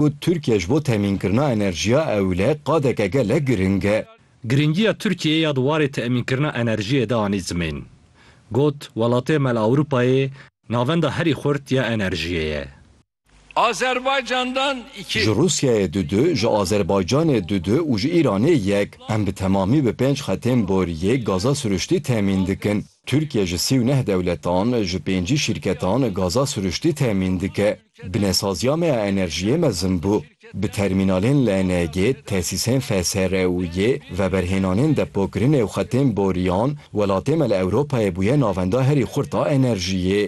Got, Tirkiye ji bo temînkirina enerjiya ewle qadeke gelek giring e. Giringiya Tirkiyeyê ya di warê temînkirina enerjiyê de anî zimên. Got, Welatê me li Ewropayê navenda herî xurt ya enerjiyê ye. Azerbaycan'dan iki. Ji Rusyayê du du, ji Azerbaycanê du du û ji Îranê yek. Em bi temamî bi pênc xetên boriyê gaza siruştî temîn dikin. Tirkiye ji sî û neh dewletan, ji pêncî şîrketan gaza siruştî temîn dike. Binesaziya me ya enerjiyê mezin bû. Bi termînalên LNG, tesîsên FSR û yê veberhênanên depokirinê û xetên boriyan, welatê me li Ewropayê bûye navenda herî xurt a enerjiyê.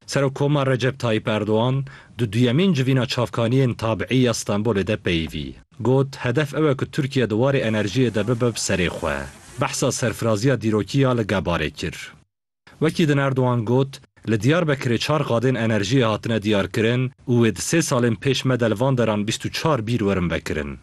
Serokkoma Recep Tayyîp Erdogan di duyemîn civîna çavkaniyên tabîî ya Stenbolê de peyivî got, Hedef ew e ku Tirkiye di warê enerjiyê de bibe bi serê xwe. Behsa serfiraziya dîrokî ya li Gebarê kir. Wekî din Erdogan got, Li Diyarbekirê çar qadên enerjiyê hatine diyarkirin û wê di sê salên pêş me de li van deran bîst û çar bîr werin vekirin.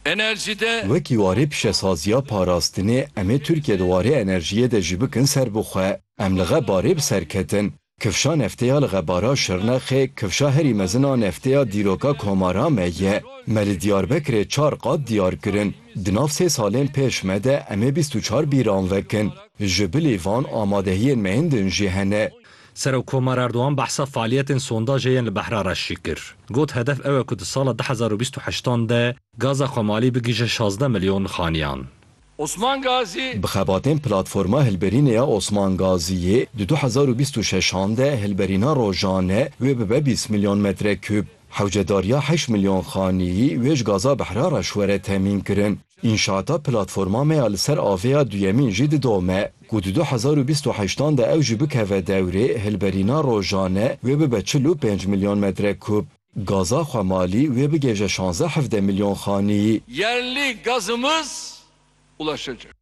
Enerjî de. Wekî warê pişesaziya parastinê, em ê Tirkiye di warê enerjiyê de jî bikin serbixwe. Em li Xeb Arê bi ser ketin. Kifşa nefteya li Xebara Şirnexê kifşa herî mezin a nefteya dîroka Komara me ye. Me li Diyarbekirê çar qat diyar kirin. Di nav sê salên pêş me de em ê bîst û çar bîran vekin. Ji bilî van amadehiyên me yên din jî hene. Serokkomar Erdogan behsa faaliyetên sondajê yên li Behra Reşî kir. Got hedef ew e ku di sala du hezar û bîst û heştan de gaza xwemalî bigihîje şazdeh milyon xaniyan. Osman Gazî. Bi xebatên Platforma Hilberînê ya Osman Gazîyê di du hezar û bîst û şeş an de hilberîna rojane wê bibe bîst milyon metrekûb. Hewcedariya heşt milyon xaneyî wê ji gaza Behra re şwere temîn kirin. Înşaata Platforma me ya li ser avê ya duyemîn jî didome ku di du hezar û bîst û heşt an de ew jî bikeve dewrê hilberîna rojane wê bibe çil û pênc milyon metrekûb. Gaza xwe malî wê bigêje şanze hevdeh milyon xanî. Yerli gazımız ulaşacak.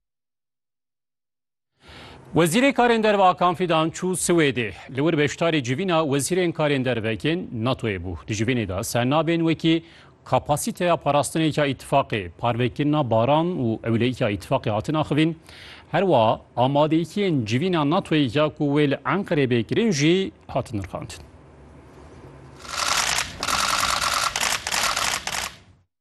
Wezîrê Karên Derve Akan Fidan çû Swêdê. Li wir beşdarî civîna wezîrên karên dervekên NATO'yê bû. Di civînê de ser nabên wekî kapasîteya parastinêka îtîfaqê, parvekirina baran û ewleyîka îtîfaqê hatin axivîn. Her wiha amadeyîtiyên civîna NATO'yê ya ku wê li Enqerê bê kirin jî hatin nirxandin.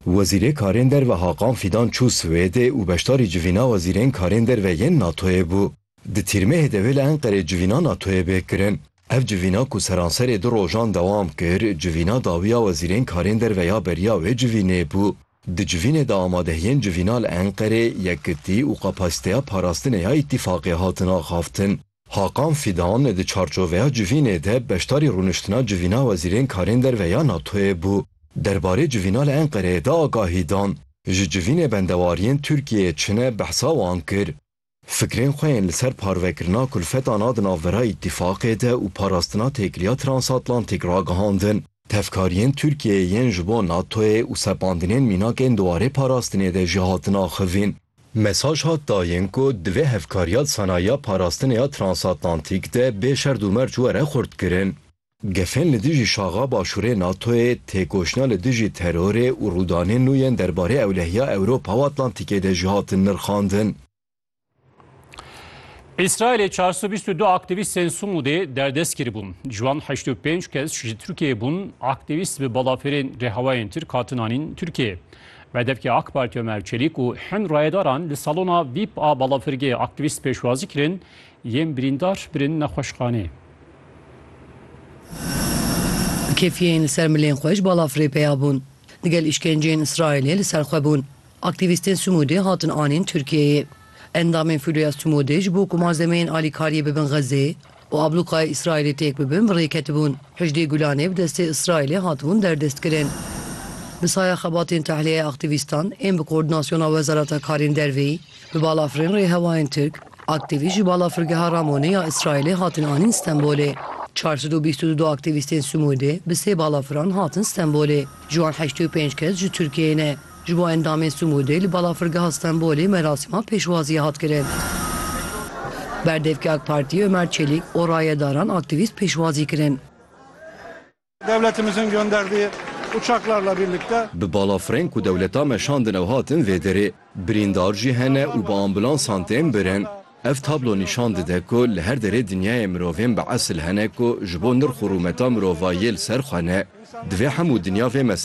Wezîrê Karên Derve Hakan Fîdan çû Swêdê û beşdarî civîna wezîrên karên derve yên NATO'yê bû. Di tîrmehê devê li Enqerê civîna NATO'yê bê kirin. Ev civîna ku seranserê du rojan dewam kir, civîna dawiya wezîrên karên derve ya beriya wê civînê bû. Di civînê de amadehiyên civîna li Enqerê, yekitî û kapasîteya parastinê ya îtîfaqê hatin axaftin. Hakan Fidan di çarçoveya civînê de beşdarî rûniştina Civîna Wezîrên Karên Derve ya NATO'yê bû. Derbarê civîna li Enqereyê de agahî dan. Ji civînê bendewariyên Tirkiyeyê çine behsa wan kir. Fikrên xwe yên li ser parvekirina kulfetan a di navbera Îtîfaqê de û parastina têkiliya transatlantîk ragihandin. Tevkariyên Tirkiyeyê yên ji bo NATO'yê û sepandinên mînak ên di warê parastinê de jî hatin axivîn. Mesaj hat dayin ku divê hevkariya di senayiya parastinê ya transatlantîk de bê şerd û merc were xurtkirin. Gefên li dijî şaxa Başûrê NATO'yê, têkoşîna li dijî terorê û rûdanên nû yên derbarê ewlehiya Ewropa û Atlantîkê de jî hatin nirxandin. Îsraîlê çar sed û bîst û du aktîvîstên Sumûdê derdest kiribûn. Ji wan heşt û pênc kes ji Tirkiyeyê bûn, aktîvîst bi balafirên rêhewayên Tirk hatin anîn Tirkiyeyê. Bedevkê AK Partî Omer Çelîk û hin rayedaran li salona vîp a balafirgehê aktîvîst pêşwazî kirin, yên birîndar birin nexweşxaneyê. Kêfiyên li ser milên xwe ji balafirê peya bûn. Digel îşkenceyên Îsraîlê li ser xwe bûn. Aktîvîstên Sumûdê hatin anîn Tirkiyeyê. Endamên Filoya Sumûdê ji bo ku malzemeyên alîkariyê bibin Xezê û ablûqaya Îsraîlê têk bibin bi rê ketibûn. Hejdê Gulanê bi destê Îsraîlê hatibûn derdestkirin. Bi saya xebatên tehliyeya aktîvîstan ên bi koordinasyona Wezareta Karên Dervê bi balafirên rêhewayên Tirk, aktîvîst ji balafirgeha Ramonê ya Îsraîlê hatin anîn Stenbolê. Çar sed û bîst û du aktîvîstên Sumûdê bi sê balafiran hatin Stenbolê. Ji wan heştê û pênc kes ji Tirkiyeyê ne. Ji bo endamên Sumûdê li Balafirgeha Stenbolê merasîma pêşwaziyê hat kirin. Berdevkê AK Partiyê Ömer Çelik û rayedaran aktîvîst pêşwazî kirin. Devletimizin gönderdiği uçaklarla birlikte. Bi balafirên ku dewleta me şandin ew hatin vê derê. Birîndar jî hene û bi ambulansan tên birin. Ev tablo nîşan dide ku li her derê dinyayê mirovên bi esil hene ku ji bo nirx û rûmeta mirovayiyê li ser xwe ne. Divê hemû dinya vê